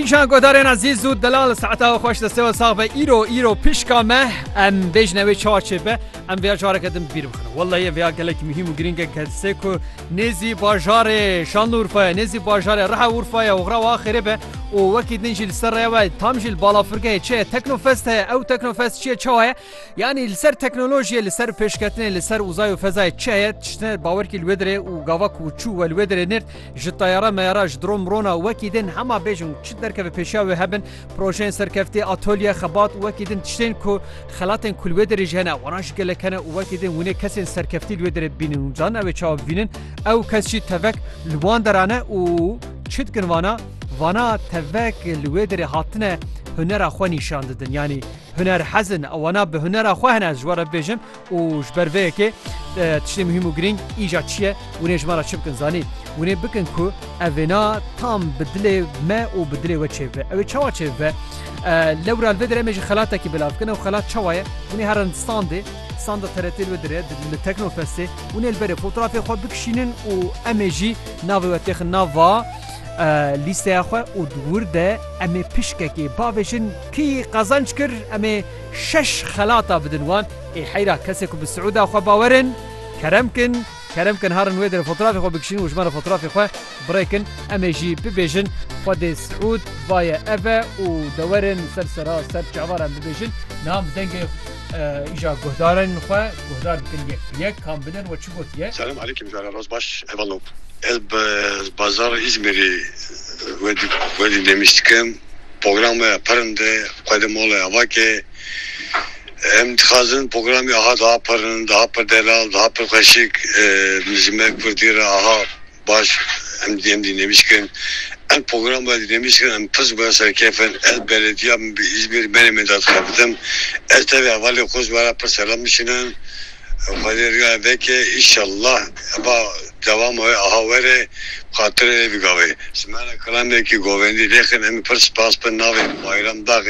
Îşan godarên ezîz û delal saeta we xweş destewe sax be îro îro pişka me em bêjne wê çar çêbe em vêya careke din bîr bixin Wellahê vêya gelek muhîm û girînge kesê ku nêzî bajarê şanlı urfaya nêzî bajarê reha urfaya û xra axirê be û wekî din jî li ser rêya we tam jî li balafirgehê çi ye teknofest heye ew teknofest çi ye çawa ye yanî li ser teknolojiyê li ser pêşketinê li ser uzay û fezayê çi heye tiştine bawerkî li wê dirê û gava ku çû we li wê dirê nêrt Ji teyara meyara ji dron mirona wekî din hema bêjin çi derkeve pêşiya wê hebin projeyên serkeftî, atolye, xebat wekî din tiştên ku xelatên ku li wê derê jî hene wana ji gelek hene û wekî din hûnê kesên serkeftî li wê derê bînin û carin ew ê çawa bibînin ew kes jî tevek li wan deran e û çi dikin vana vana tevek li wê derê hatine hunera xwe nîşan didin yanî huner hezin ew wana bi hunera xwe hene ez ji we re bibêjim Û ji ber vê yekê tiştê muhîm û girîng îja çi ye? Winê ji me re çi bikin zanî? Winê bikin ku ev vêna tam bi dilê me û bi dilê we çêbibe. Ew ê çawa çêbibe? Lewra li vê derê em ê jî xelatekî belav bikin. Ew xelat çawa ye? Winê here li standê, standa TRT li vê derê li Teknofestê, winê li berê fotrafê xwe bikişînin û em ê jî navê we têxin nava lîsteya xwe û di wir de em ê pişkekê bavêjin kî qezanc kir? Em ê. Şeş xelata bidin wan. Ê heyra kesê ku bi Siûda xwe bawer in, kerem kin, kerem kin harin wê derê fotrafê xwe bikişînin û ji me re fotrafê xwe birê kin. Em ê jî bibêjin Xwedê Siûd baye ev e û dewerin ser sera ser çavar em bibêjin. Niha em bi dengê îja guhdarên xwe guhdar bikin yek bi yek kam bidin we çi gotiye. Selam Aleykim jara roz baş hevalop. Ez bi bazar Îzmîrî wê wê dî nemîştikim. Programê Pirnd xwe di Mola Evakê em dixwazin programê aha daha pirnd, aha pir delal, daha pir xweşik ji me kurdî re aha baş em em dînêmîş kirin. Ev programê dînêmîş kirin em pirs bûye ser kêfin. Ez belediya min bi Îzmîr menê min de dixebitim. Ez tevî hevalên xwe ji we re pir selam bişînin. Xwedê rûyane veke inşallah heba dewama wê aha were xatirê wê bigave. Simena Kilamekî Govendî Lêxin Em pir spas bin navê Bayram Bexê.